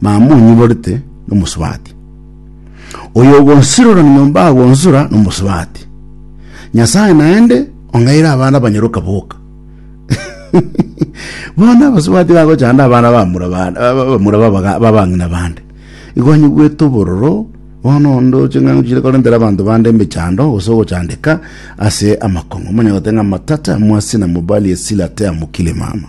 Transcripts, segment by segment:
Mama onyiborete nomosubati. Oyo ogonsirora nyomba agonsura nomosubati. Nyasaye naende ong'aire abana abanyaroka boka. Bono abasubati bagochanda abana bamura bande bamura babaga- babang'ina bande. Igo anyigwete obororo bono onde oche ng'ang'u chire korentera abanto bande emechando gose ogochandeka ase amakong'u. Omanye goteng'a matata mwasi na mobali esila tea mukile mama.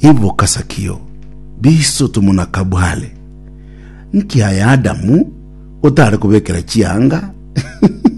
Iboka Sakio, biso tomonakabware. Nki aye Adamu otare kobekera chianga?